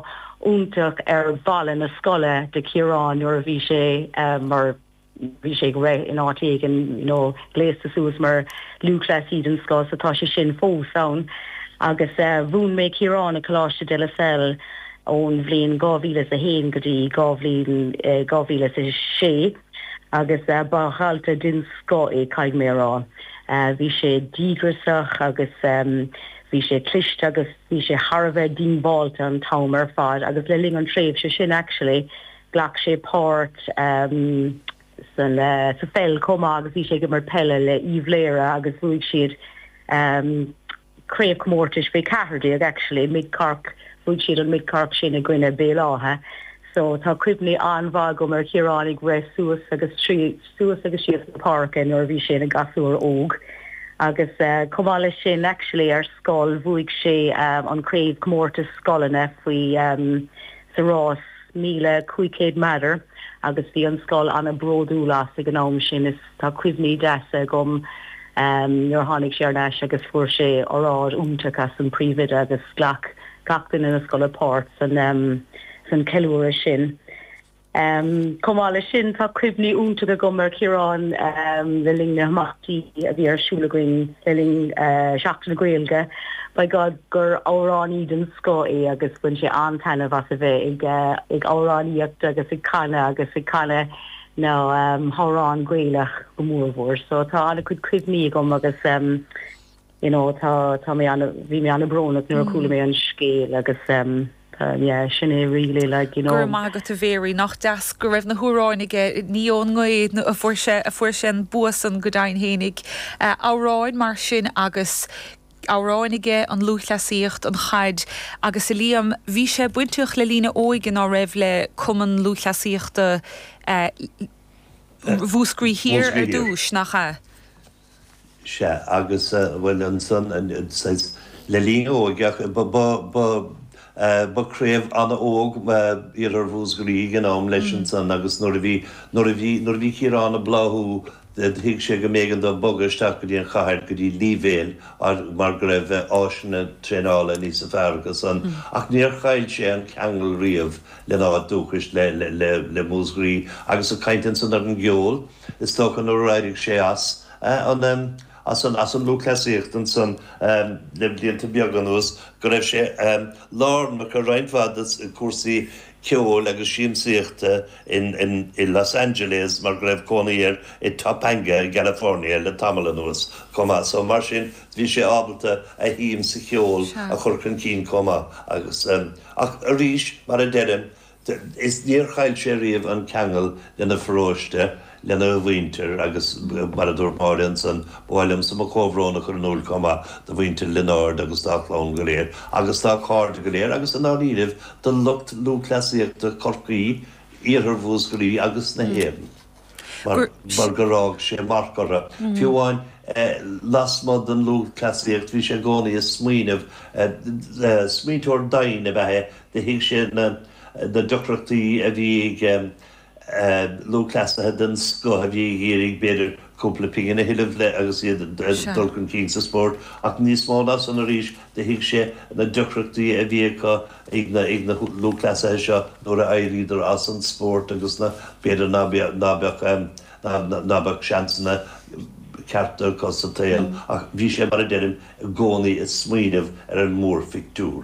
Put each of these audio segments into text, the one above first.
iontach ar bhalla na scoile de Chiarán nuair a bhí sé mar bhí sé ag rith in áit éigin you know gléasta suas mar lúthchleasaí den scoth so tá sé sin fós ann agus eh mhúin mé Ciarán i gColáiste De La Salle ón bhliain 2001 go dtí 2006 agus eh ba dhalta den scoth é caithfidh mé a rá eh bhí sé díograiseach agus ehm Bhí sé cliste agus bhí sé thar a bheith díongbháilte an t-am ar fad agus le linn an tréimhse sin actually ghlac sé páirt san sa pheil chomh maith agus bhí sé ag imirt peile le Uíbh Laoghaire agus bhuaigh siad craobhchomórtais faoi 14 actually Mid Cork bhuaigh siad an Mid Cork sin i gcoinne Béal Átha so tá cuimhní an-mhaith agam ar Chiarán ag rith suas agus suas agus síos na páirce nuair a bhí sé ina ghasúr óg agus chomh maith leis sin actually ar scoil bhuaigh sé an craobh comórtas scoileanna faoi sa rás míle cúig chéad méadar agus bhí an scoil ana bródúil as ag an am sin is tá cuimhní deasa agam nuair a tháinig sé ar ais agus fuair sé óráid iontach ón phríomhoide agus ghlac gach duine na scoile páirt san san ceiliúradh sin. Chomh maith leis sin, tá cuimhní iontacha agam ar Chiarán le linn na himeachtaí a bhí ar siúl againn le linn Sheachtain na Gaeilge. By God gur amhránaí den scoth é agus bhain sé an-taitneamh as a bheith ag amhránaíocht agus ag canadh agus ag canadh na hamhráin Gaelach go mór mhór. So tá an-chuid cuimhní agam agus. you know tá tá mé ana bhí mé ana brónach nuair a chuala mé an scéal agus em yeah sin é really like you know. Go raibh maith agat a Mary, nach deas go raibh na hamhráin aige, ní ón ngaoth a fuair sé an bua san go deimhin fhéinig. Amhráin mar sin agus amhráin aige, an lúthchleasaíocht, an chaid agus a Liam, bhí sé bainteach le linn a óige ná raibh le Cumann Lúthchleasaíochta Mhúscraí Thiar ar dtúis, nach ea? Sea, agus bhuel ansan, saghas le linn a óige, ba craobh an-óg Iarthar Mhúsgraí ag an am leis ansan agus nuair a bhí, nuair a bhí, nuair a bhí Ciarán ag bláthú, thuig sé go mb'éigean dó bogadh isteach go dtí an chathair, go dtí Leevale mar go raibh áiseanna traenála níosa fearr acu san ach níor chaill sé an ceangal riamh lena áit dúchais, le Músgraí agus ag caint ansan ar an gceol, Is dócha nuair a éirigh sé as an lúthchleasaíocht ansan le blianta beaga anuas go raibh sé lárnach i roinnt mhaith de chúrsaí ceoil agus siamsaíochta i Los Angeles mar go raibh cónaí air i Topanga i gCalifornia le tamall anuas chomh maith so mar sin bhí sé ábalta a shuim sa cheol a chur chun cinn chomh maith ach arís mar a deirim Is níor chaill sé riamh an ceangal lena pharóiste, lena mhuintir agus mar a dúirt Máire ansan, ba mhaith liomsa mo chomhbhrón a chur in iúil chomh maith do mhuintir Lionáird agus dá chlann go léir agus dá chairde go léir agus i ndáiríribh do lucht lúthchleasaíochta Chorcaí, Iarthar Mhúscraí agus na hÉireann. mar gur fhág sé marc orthu. Fiú amháin lasmuigh den lúthchleasaíocht bhí sé i gcónaí ag smaoineamh. Smaointeoir doimhin ab ea é, do thuig sé na deacrachtaí a bhí ag lúthchleasaithe den scoth a bhí ag iarraidh b'fhéidir cúpla pingin a thuilleamh le agus iad ag dul chun cinn sa spórt ach níos mó ná san arís Do thuig sé na deacrachtaí a bhí acu ag na lúthchleasaithe seo nuair a éiríodar as an spórt agus b'fhéidir ná beadh seansanna cearta acu sa tsaol ach bhí sé, mar a deirim, i gcónaí ag smaoineamh ar an mórphictiúr.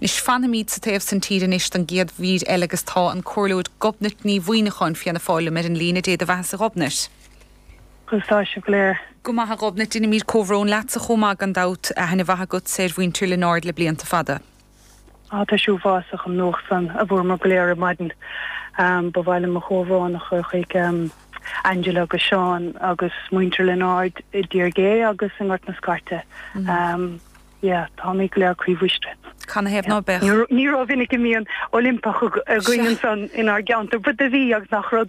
Anois fanfaimid sa taobh san tíre anois don gcéad mhír eile agus tá an comhairleoir Gobnait Ní Mhuimhneacháin Fianna Fáil liom ar an líne. Dé do bheathasa a Ghobnait. Conas tá sibh go léir. Go maith a Ghobnait, deinimíd comhbhrón leatsa chomh maith gan dabht. Aithne mhaith agatsa ar mhuintir Lionáird le blianta fada. Ah tá sé uafásach an nuacht san a bhfuaireamar go léir ar maidin. Ba mhaith liom mo chomhbhrón a chur chuig Angela agus Seán agus muintir Lionáird i dTír Gé agus i nGort na Scairte. Yeah, táimid go léir croíbhriste. Canathaobh ná beadh? Ní rómhinic a mbíonn Oilimpeach againn ansan inár gceantar, but do bhí agus nach rud.